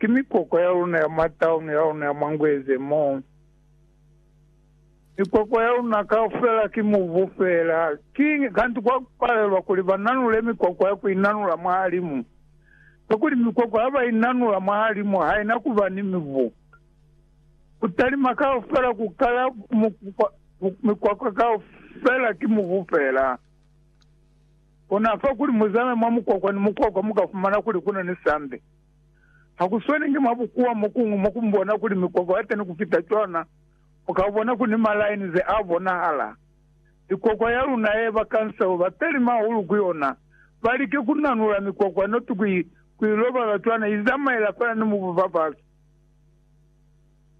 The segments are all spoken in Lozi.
Ki mikwakwa ya luna ya mwa tauni ya luna ya mwa Ngweze mo. Mikwakwa ya luna kaufela ki mubu feela. Kiñi kanti kwa palelwa kuli ba nanule mikwakwa ya ku inanula mwahalimu? Kakuli mikwakwa ya ba inanula mwahalimu haina kuba ni mibu. Ku talima kaufela ku kala mikwakwa kaufela ki mubu feela. Kona fa kuli muzame mwa mukwakwa ni mukwakwa muka fumana kuli kuna ni sambe. Ha ku sweli inge mwa bukuwa mo kuñwi mo ku mbona kuli mikwakwa ya teni ku fita cwana, u ka bona ku ni malaini ze a bonahala. Mikwakwa ya luna ye ba kanseo ba peli mahulu ku yona ba like ku nanula mikwakwa noti ku i ku i lobaza cwana i zamaela fela ni mubu fafasi.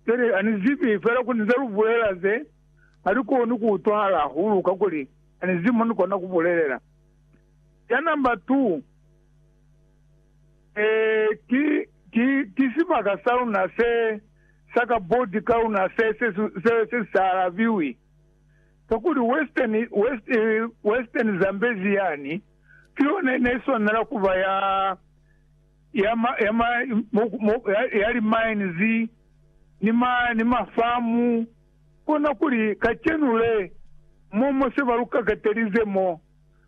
Pili, ha ni zibi, fela ku ni ze lu bulela ze ha li koni ku utwahala hahulu kakuli ha ni zibi mo ni kona ku bulelela. Cana nba 2. Ee, ki, ki, ki sibaka sa luna se, sa kaboti ka luna se, se, se, se si sa alabiwi. Kakuli Western, West, Western Zambezi yani, ki yona ine iswanela kuba ya, ya, ma, ya, ma, mo, mo, ya, ya li mines, ni ma, ni ma farm, konakuli kacenu le, mo, mo se ba lu kakatelize mo.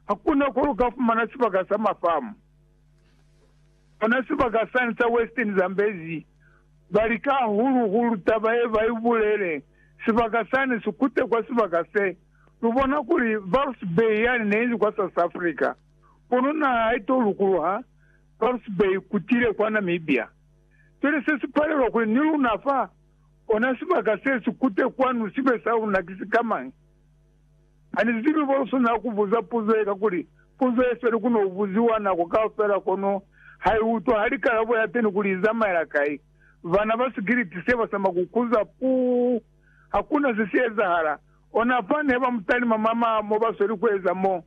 Hakuna ko lu ka fumana sibaka sa mafamu. Kona sibaka sani sa Western Zambezi, ba lika hahulu-hulu taba ye ba i bulele, sibaka sani si kute kwa sibaka se. Lu bona kuli Walvis Bay yani ne inzi kwa South Africa, kono naha ha i to lukuluha Walvis Bay i kutile kwa Namibia. Cwale se si palelwa kuli ni luna fa, kona sibaka se si kute kwanu sibe sa luna ki sikamañi? Hanizibi ko luswanela kubuza puzo ye kakuli puzo ye feli kuno ubuziwa nako kaufela kono haiutwa hali kalabo yateni kuli izamaela kai. Bana ba Sigiliti se basama kukuza puu. Hakuna se si ezahala. Ona fani he bamutalima mama mo basweli kueza mo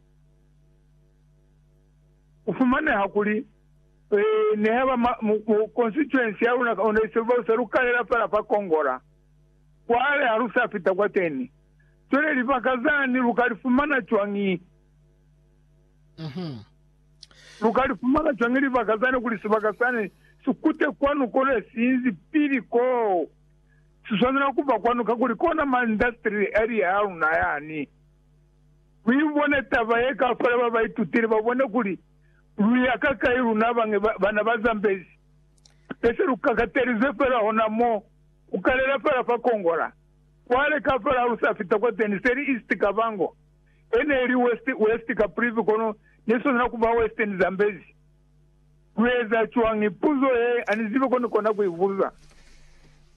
kufumaneha kuli nehe ba constituency yaluna ona isebausa lukalela fela fa Kongola. Cwale ha lu sa fita kwateni, cwale libaka zani lu ka li fumana cwañi? Lu ka li fumana cwañi libaka zani kuli sibaka sani si kute kwanu kona siinzi pili koo? Si swanela ku ba kwanu kakuli kona ma industrial area a luna yani. Lu ibone taba ye ka fela ba ba itutile ba bone kuli lu ya kakai luna bañi bana ba zambezi. Ne se lu kakatelizwe fela hona mo. Ku kalela fala fa Kongola, kwale ka fala ha lu sa fita kwa Teni seli East Kavango, e ne li West, West Caprivi kono ne sona na ku ba Western Zambezi. Lu eza cwañi? Puzo ye a ni zibi ko ni kona ku i buza.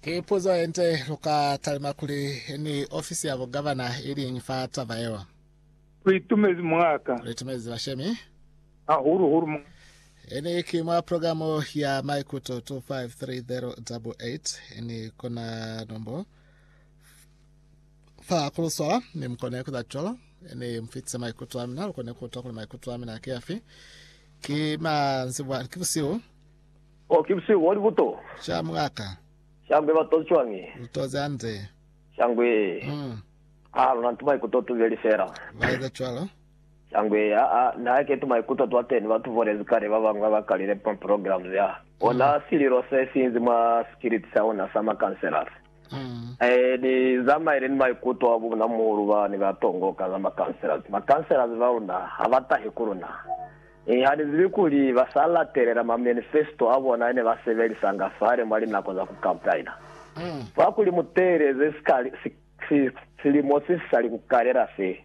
Ki puzo ye nde. Lu ka talima kuli ni ofisi ya bugavana iliñi fa taba yeo? Lu itumezi mwa ka. Lu itumezi bashemi. hahulu-hulu mu. Ini ki mwa progamu ya Maikuto 253088, ini kona nombo fa kuluswala, mi mukone kuza cwalo, ini mufitise maikuto amina, lukone kuta kuli maikuto amina ki afi. Ki manzibwa, ki busihu. Oh, ki busihu boli buto. Sha mungaka. Shangwe batozi cwañi? Lutozi hande. Shangwe. Mm. Ah, luna ntu maikuto tubeli fela. Baeza cwalo. Sangwe, aa, na hake tumaikuto twa teni ba tu volezi kale ba bañwi ba ba kalile pa programs ya ona, sililo se sinzi mwa sikiliti sa ona sa makanselasi. Ee, ni zamaile ni maikuto a bunamuhulu ba ne ba tongoka za makanselasi. Makanselasi ba luna ha ba tahi ku luna. Mi ha ni zibi kuli ba sa latelela mamanifesto a bona ne ba sebelisanga fale mwa linako za ku kampaina. Fa kuli mu teeleze sikali, si, si, silimo se si sali ku kalela se.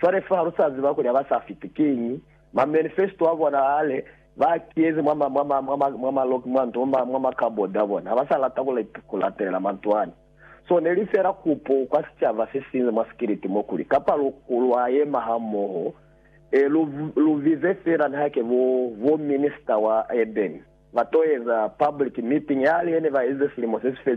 Cwale fa lu sa ziba kuli ha ba sa fiti kiñi, ma manifesto a bona hale ba a kiyezi mwa ma, mwa ma, mwa ma, mwa ma lock, mwa nto, mwa ma, mwa ma cupboard a bona. Ha ba sa lata ku, ku latelela manto ani. So, ne li fela kupo kwa sicaba se sinzi mwa sikiliti mo, kuli, kapa lu, lwa yema ha moho, e, lu, lu bize fela niha ke bo, bo minister wa urban, ba to eza public meeting yale ye ne ba eze silimo se si felile.